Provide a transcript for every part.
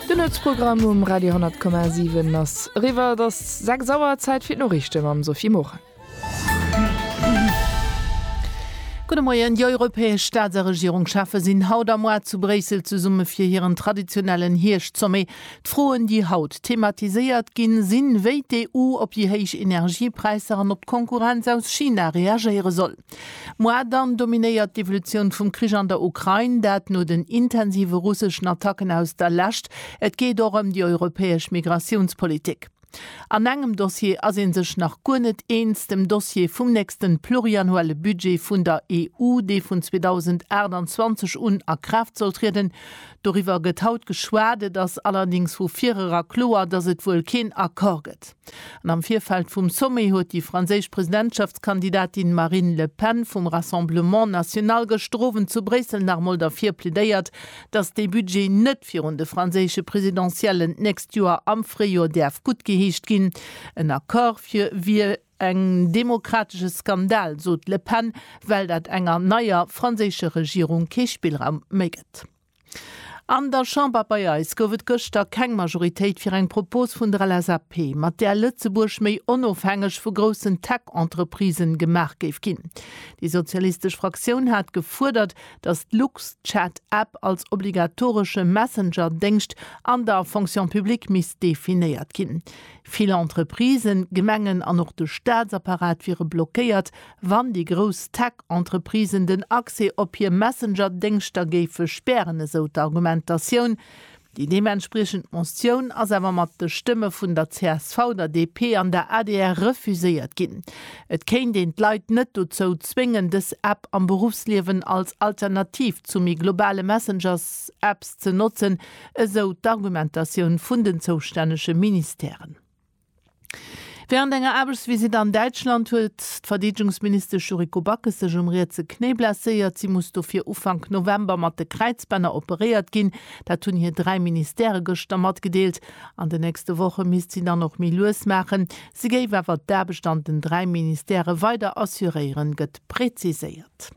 Den Nuetsprogramm um Radio 10,7 ass eriwwer. Et ass 6 Auer, Zäit fir d'Noriichte mam Sophie Morang. Gudde Moien. Déi europäesch Staats a Regierungscheffe sinn haut a moar zu Bréissel zesumme fir hiren traditionellen Hierscht-Sommet. D'Froen, déi haut thematiséiert ginn, sinn, wéi d'EU op déi héich Energiepräisser an op d'Konkurrenz aus China reagéiere soll. Moi, dann dominéiert d'Evolutioun vum Krich an der Ukrain, dat no den intensive russeschen Attacken aus der Lescht. Et geet och ëm déi europäesch Migratiounspolitik. An engem Dossier ass ee sech nach guer net eens, dem Dossier vum nächste pluriannuelle Budget vun der EU, dee vun 2028 un a Kraaft soll trieden. Doriwwer gëtt haut geschwat. Et ass allerdéngs vu virera kloer, datt et wuel keen Accord gëtt. An am Virfeld vum Sommet huet déi franséisch Presidentschaftskandidatin Marine Le Pen vum Rassemblement National gëschter Owend zu Bréissel nach emol derfir plädéiert, datt dee Budget net virun de franséische Presidentiellen d'nächst Joer am Fréijor däerf guttgeheescht ginn. En Accord fir wier en demokratesche Skandal, sot d'Le Pen, well dat enger neier franséischer Regierung kee Spillraum méi gëtt. An der Chamber bei eis gouf et gëschter keng Majoritéit fir eng Propos vun der LSAP, mat där Lëtzebuerg méi onofhängeg vu groussen Tech-Entreprisen gemaach géif ginn. Déi sozialistesch Fraktioun hat gefuerdert, datt d'Luxchat-App als obligatoresche Messenger-Déngscht an der Fonction publique misst definéiert ginn. Vill Entreprisen, Gemengen an och de Staatsapparat wiere blockéiert, Wann déi grouss Tech-Entreprisen den Accès op hir Messenger-Déngschter géife spären, esou d'Argumentatioun. Déi deementspriechend Motioun ass awer mat de Stëmme vun der csv, der DP an der adr refuséiert ginn. Et kéint een d'Leit net dozou zwéngen, dës App am Beruffsliewen als Alternativ zu méi globale Messengers-Apps ze notzen, esou d'Argumentatioun vun den zoustännege Ministèren. Wärend enger Aarbechtsvisitt an Däitschland huet d'Verdeedegungsministesch Yuriko Backes sech um rietse Knéi blesséiert. Si muss dofir Ufank November mat de Kräizbänner operéiert ginn. Dat hunn hir dräi Ministèrë gëschter matgedeelt. An de nächste Woche misst si dann och méi lues maachen. Si géif awer d'Aarbecht an den dräi Ministèrë weider assuréieren, gëtt preziséiert.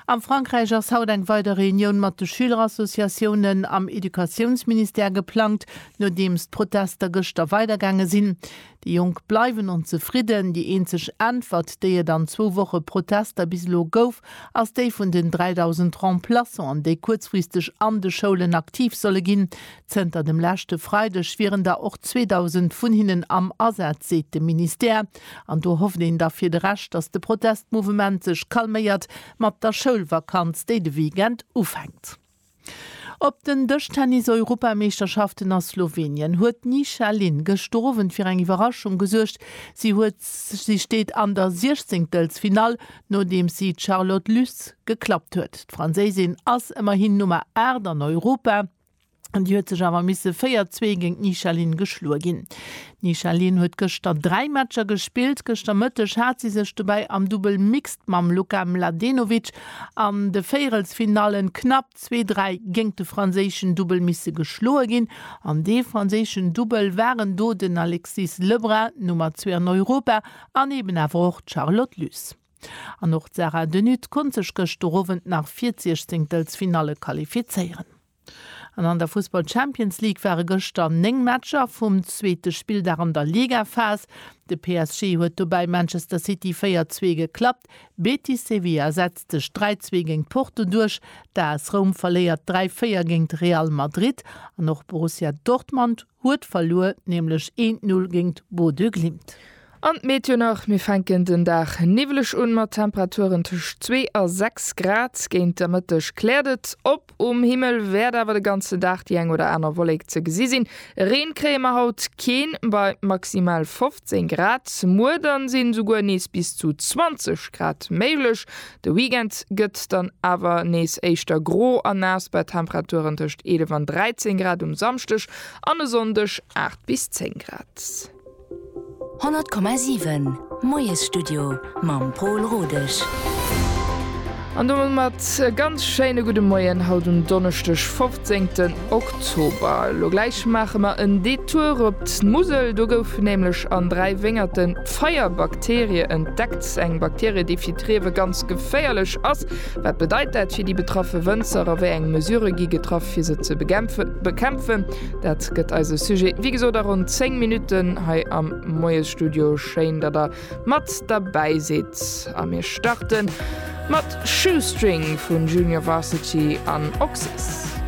A Frankräich ass haut eng weider Reunioun mat de Schülerassociatiounen am Educatiounsministère geplangt, nodeems d'Protester gëschter weidergaange sinn. Déi Jonk bleiwen onzefridden. Déi eenzeg Äntwert, déi et an zwou Woche Protester bis elo gouf, ass déi vun den 3.000 Remplaçanten, déi kuerzfristeg an de Schoulen aktiv solle ginn. Zënter dem leschte Freideg wieren der och 2.000 vun hinnen am Asaz, seet de Ministère. An do hofft een da fir de Rescht, datt de Protestmouvement sech calméiert mat der Schoulvakanz, déi de Weekend ufänkt. Op den Dëschtennis-Europameeschterschaften a Slowenien huet d'Nisha Lin gëschter Owend fir eng Iwwerraschung gesuergt. Si huet si steet an der Siechzéngtelsfinall, nodeems si d'Charlotte Luz geklappt huet. D'Franséisin ass ëmmerhin Nummer 8 an Europa. An déi huet sech awer misse 4, 2 géint d'Michaeline geschloe ginn. D'Michaeline huet gëschter 3 Matcher gespillt. Gëschter Mëtteg hat si sech dobäi am Dubbel Mixed mam Luka Mladenovic an de Véierelsfinallen knapp 2, 3 géint de franséischen Dubbel misse geschloe ginn. An dee franséischen Dubbel waren do den Alexis Lebrun, Nummer zwee an Europa, an eben awer och d'Charlotte Luce. An och d'Sarah De Nutte konnt sech gëschter Owend nach fir d'Siechzehnktelsfinalle qualifizéieren. An an der Fussball-Champions League ware gëschter 9 Matcher vum zweete Spilldag an der Ligaphas. De PSG huet dobäi Manchester City 4, 2 geklappt. Betis Sevilla setzt sech 3, 2 géint Porto duerch. D'AS Roum verléiert 3, 4 géint Real Madrid. An och Borussia Dortmund. Huet verluer nämlech een Null géint Bodø Glimt. An d'Meteo nach, Mir fänken den Dag niwweleg un, mat Temperaturen tëscht 2 a 6 Grad. Géint der Mëtteg kläert et op, um Himmel wäert awer de ganzen Dag déi eng oder aner Wollek ze gesi sinn. Reen kréie mer haut keen, bei maximal 15 Grad. Muer dann sinn esouguer nees bis zu 20 Grad méiglech. De Weekend gëtt dann awer nees éischter gro a naass bei Temperaturen tëscht 11 an 13 Grad um Samschdeg an e Sonndeg 8 bis 10 Grad. 100,7 Moiesstudio mam Pol Rodesch. An domat e ganz schéine gudde Moien haut um Donneschdeg 15 Oktober. Elo gläich maache mer en Detour op d'Musel, do goufen nämlech an 3 Wéngerten, D'Feierbakterie entdeckt, eng Bakterie, déi fir d'Riewe ganz geféierlech ass. Wat bedeit dat fir déi betraffe Wënzer a wéi eng Mesurë gi getraff, fir se ze bekämpfen? Dat gëtt eise Sujet, wéi gesot, a ronn 10 Minutten hei am Moiesstudio. Schéin, datt Der mat derbäi sidd a mir starte mat Shoestring vu Junior Varsity an Oxxxx.